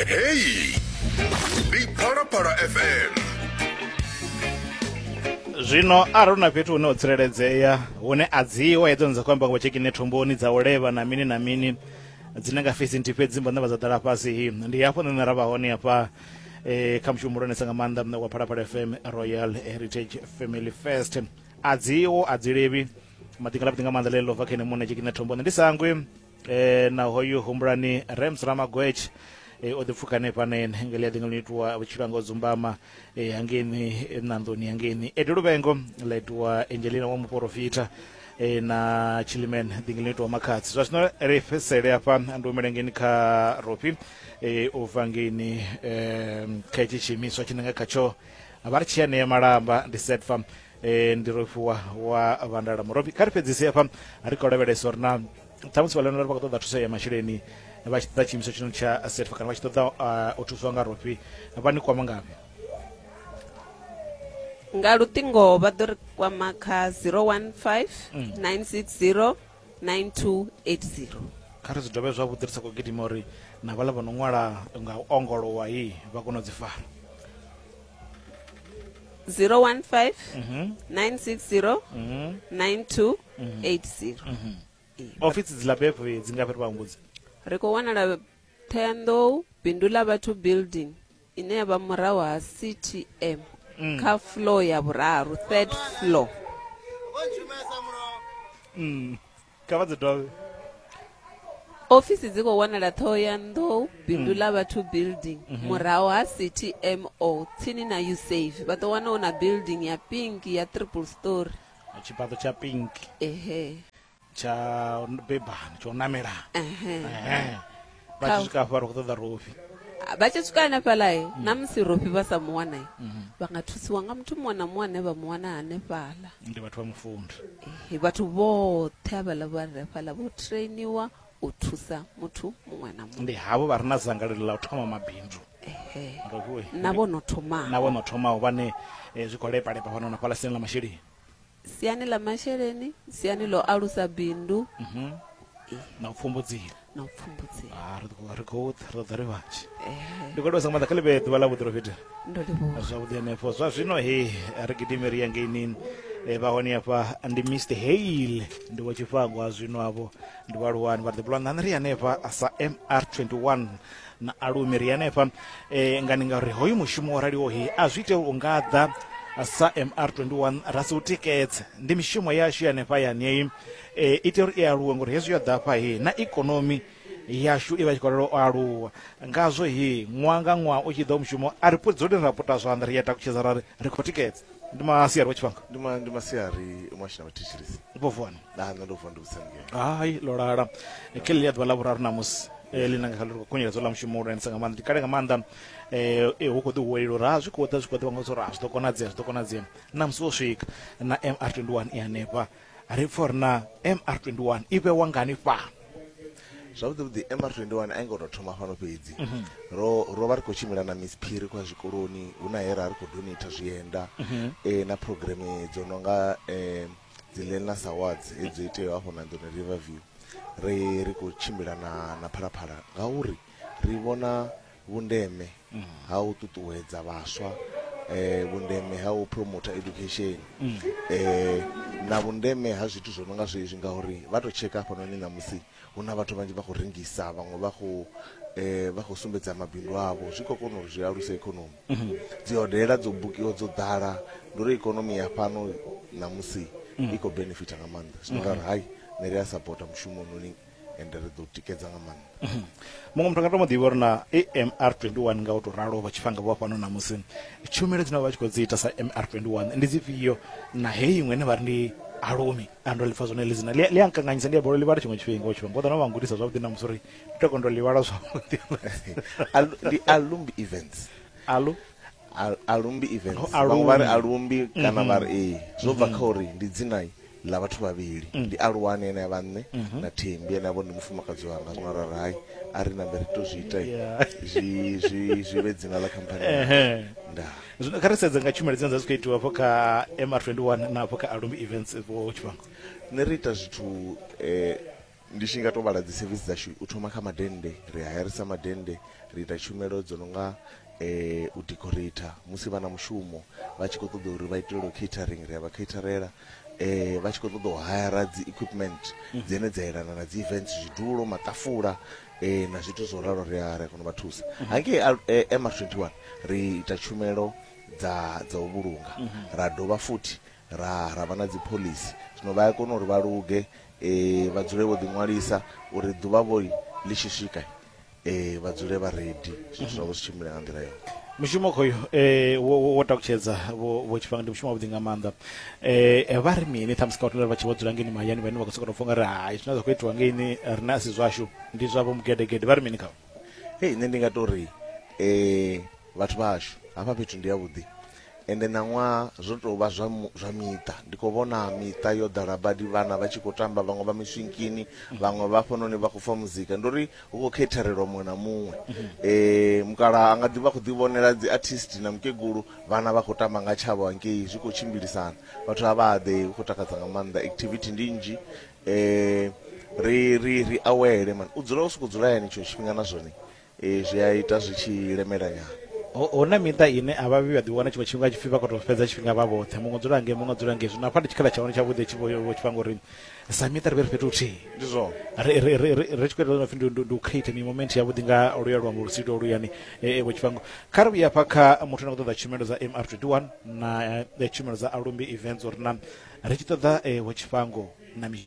heyi ndi phalaphala fm zwino arali hu na fhethu hune ho tsireledzea hune a dziwa hedzo ni dza khou amba ngo tshekine thumboni dza u levha na mini na mini dzine nga fesi nthi fhedzi mbo ndavha dza ḓala fhasi ndi hafho nṋe ra vha hone hafha eh, kha mushumo muhulwanesa nga maanḓa mṋe wa phalaphala fm royal heritage family first a dziwo a dzi levhi maḓi nga labi nga maanḓa ḽeḽo bva kha ene muṋe tshekine thumboni ndi sangwe eh, na hoyu humbulani rems ramagwetsh eh, o ḓipfuka hanefha ne ngeli ya ḓingelo itiwa vhutshilo anga o dzumbama eh, hangeni eh, ṋanḓoni hangeni edo luvengo ḽa itiwa angelina wa muporofita eh, na chiliman ḓingelo itiwa makhadzi zwa zwino ri fhesele hafha ndi humele ngeni kha rofi eh, u bva ngeni eh, kha itshi tshiimiswa tshine nga khatsho vha ri tshi ya ṋea malamba ndi setfam e, ndi rofiwa wa vandala murofi kha ri fhedzise hafha ri khou lavhelesa uri na ṱhamusi vha leonora vha khou ṱoḓa thuso ya masheleni vha tshi ṱoḓa tshiimiswa tshino tsha setfa kana vha tshi ṱoḓa uh, u thuswa nga rofi vha ni kwama ngafhi nga luṱingo vha ḓo ri kwama kha 015 960 9280 kha ri zwi dovhe zwavhuḓi ri sa khou gidima uri na vhala vha no ṅwala nga u ongolowa yi vha kona u dzi fara 015 960 9280 ofisi dzi labepo dzi nga fhiri vhahumbudzi ri khou wanala thenḓou bindu ḽa vhathu building ine ya vha murahu ha ctm mm. kha floor ya vhuraru third floor mm. kha vha dzi dovhe ofisi dzi khou wanala thohoyandou bindu mm. ḽa vhathu building mm -hmm. murahu ha ctmo tsini na usafe vha ḓo wana hu na building ya pink ya triple story tshifhaṱo tsha pink ehe tsha bebani tsha u namela Ehe. Ehe. vha Kha- tshi swika hafha ri khou ṱoḓa rofi Ah, vha tshi swika hanefhaḽae na musi rofi vha sa mu wanae vha nga thusiwa nga muthu muṅwe na muṅwe ane vha mu wana hanefhaḽa ndi vhathu vha mufundi Ehe, vhathu vhoṱhe havhaḽa vha re fhaḽa vho trainiwa u thusa muthu muṅwe na muṅwe ndi havho vha re na dzangalelo ḽa u thoma mabindu Ehe. Rofi we. na vho no thoma na vho no thomaho vhane eh, zwi khou lepalepa fhano na fhaḽa sini ḽa masheleni siani ḽa masheleni siani ḽo alusa bindu mhm. na u pfumbudziwa na u pfumbudziwa ah, ri khou ro ḓa ri vhanzhi ndi khou livhasa nga maḓa kha ḽivhe ḓuvha ḽa vhuḓi lofhedza ndo livhuwa zwavhuḓi henefho zwa zwino he ri gidime ri ya ngeinini eh, vha hone afha ndi mr hale ndi wa tshifhango a zwino avho ndi vhaaluwani vha ḓi bulwa nṋani ri hanefha sa mr 21 na alumi ri henefha eh, nga ni nga ri hoyu mushumo wo raliho he a zwi ite u nga ḓa sa mr21 ra si u tikedze ndi mishumo yashu hanefha yanei eh, ite uri i aluwe ngori hezwi yo ḓafha he na ikonomi yashu i vha tshi khou lala u aluwa ngazwo he ṅwaha nga ṅwaha u tshi ḓa mushumo a ri pudzuli ra puta zwanḓa ri ya takutshedza ra ri ri khou tikedza ndi masiari wa tshifhanga ndi ma- ndi masiari mwashina vha thetshelesi vho vuwa na nṋe ndo vuwa ndi vhusemgela hai ḽo lala ke ḽi a ḓuvha ḽa vhuraru ṋamusi eh, ḽi nanga kha ḽi khunyeledza ḽa mushumo ulwanisa nga maanḓa ndi kale nga maanḓa eh, eh, hu khou ḓi huwelela uri ha zwi khou ḓa zwi khou ḓa vhaṅwe zwa uri ha zwi ḓo konadzea zwi ḓo konadzea ṋamusi wo swika na mr 21 i hanefha ri pfa uri na mr 21 i vhewa ngani fhano zwavhuḓi vhuḓi mr 21 a i ngo tou thoma fhano fhedzi Mhm. ro ro vha ri khou tshimbila na miss phiri kwa zwikoloni hu na he ra ri khou donata zwienda Mhm. eh, na programe dzo no nga um dzi Learners Awards he dzo iteaho afho Nandoni River View ri ri khou tshimbila na na Phalaphala ngauri ri vhona vhundeme ha u ṱuṱuwedza vhaswa vhundeme ha u promoter education na vhundeme ha zwithu zwo no nga zwezwi ngauri vha tou tsheka hafhanoni ṋamusi Hu na vhathu vhanzhi vha khou rengisa, vhaṅwe vha khou eh, vha khou sumbedza mabindu avho. Zwi khou kona uri zwi aluse ikonomi. Mhm. Dzi hodela dzo bukiwa dzo ḓala, ndi uri ikonomi ya fhano ṋamusi mhm. i khou benefita nga maanḓa. Zwino mhm. ra ri hai, ne ri a sapota mushumo ononi ende ri ḓo tikedza nga maanḓa mhm. muṅwe muthu nga to mu ḓivha uri na amr 21 nga u to ralo vha tshifhanga vho fhano na musi tshumelo dzine vha tshi khou dzi ita sa amr 21 ndi dzifhio na heyi iṅwe ine vha ri ndi alumi Ah, ndo lipfa zwone lizina ḽi a nkanganyisa ndi a bolo ḽivhala tshiṅwe tshifhinga tshifhinga ngo ḓana vha ngudisa zwavhuḓi na musi uri ndi to kondo ḽivhala zwavhuḓi ndi alumbi events alu alumbi events vhaṅwe vha ri alumbi kana vha ri ee mm-hmm. zwo bva kha mm-hmm. uri ndi dzina ḽa vhathu vhavhili mm. ndi aluwani ene ya vhanne mm-hmm. na thembi ene yavho ndi mufumakadzi wanga zwino ra ri hai a ri nambe ri to zwi ita zwi zwi zwi vhe dzina ḽa khamphani ndaa zwino kha ri sedze nga tshumelo dzine dza dzi khou itiwa hafho kha mr 21 na hafho kha alumbi events vho tshifhango nṋe ri ita zwithu um ndi tshi nga to vhala dzi service dzashu u thoma kha madennde ri hayarisa madennde ri ita tshumelo dzo no nga um u decorator musi vha na mushumo vha tshi khou ṱoḓa uri vha itelelwe catering ri a vha caterela eh vha tshi khou ṱoḓa u hayara dzi equipment mhm. dzine dza yelana na dzi events zwidulo maṱafula eh na zwithu zwo ralo ri a ri kona vha thusa mhm. hangei eh, MR21 ri ita tshumelo dza dza u vhulunga mhm. ra dovha futhi ra ra vha na dzi policy zwino vha ya kona uri vha luge eh vha dzule vho ḓi ṅwalisa uri ḓuvha vho ḽi tshi swika e, vha dzule vha redi zwithu zwavho zwi tshimbile nga nḓila yone mushumo khoyo eh wo wo- wo takutshedza vho vho tshifanga ndi mushumo wavhuḓi nga maanḓa eh eh, vha ri mini ṱhamusi kha vhathu vha tshi vho dzula ngeni mahayani vhane vha khou sokou tou pfha nga ri hai zwine zwa khou itiwa ngeini rine a si zwashu ndi zwavho mugedegede vha ri mini khavho hei nṋe ndi nga tori um Vhathu vha hashu, hafha fhethu ndi havhuḓi. Ende ṋaṅwa zwo tou vha zwa zwa miṱa. Ndi khou vhona miṱa yo ḓala badi, vhana vha tshi khou tamba, vhaṅwe vha miswinkini, vhaṅwe vha hafhanoni vha khou pfa muzika. Ndi uri hu khou kheitherelwa muṅwe na muṅwe. Mukalaha a nga ḓi vha khou ḓivhonela dzi artist na mukegulu, vhana vha khou tamba nga tshavho hangei, zwi khou tshimbilisana. Vhathu a vha haḓei, hu khou takadza nga maanḓa, activity ndi nnzhi. Ri ri ri awele man, u dzula u sokou dzula hayani tshiṅwe tshifhinga na zwone. Ee, zwi a ita zwi tshi lemela nyana. Hu, hu na miṱa ine a vha vhi vha ḓiwana tshiṅwe tshifhinga hu tshi pfi vha khou tou fhedza tshifhinga vha vhoṱhe, muṅwe u dzula ngei, muṅwe u dzula ngei. Zwino hafha ndi tshikhala tsha hone tshavhuḓi tshi vho, vho tshi vha ngori sa miṱa ri vhe ri fhethu huthihi. Ndi zwone. Ri, ri, ri, ri, ri tshi khou ita zwo no pfi ndi, ndi, ndi u creator mi-moment yavhuḓi nga luya luambo lu si lwo luyani, e, e, vho tshi vha ngo. Kha ri vhuye hafha kha muthu ane a khou ṱoḓa tshumelo dza MR21 na e, tshumelo dza Alumbi Events or na, ri tshi ṱoḓa e, vho Tshifhango na mi.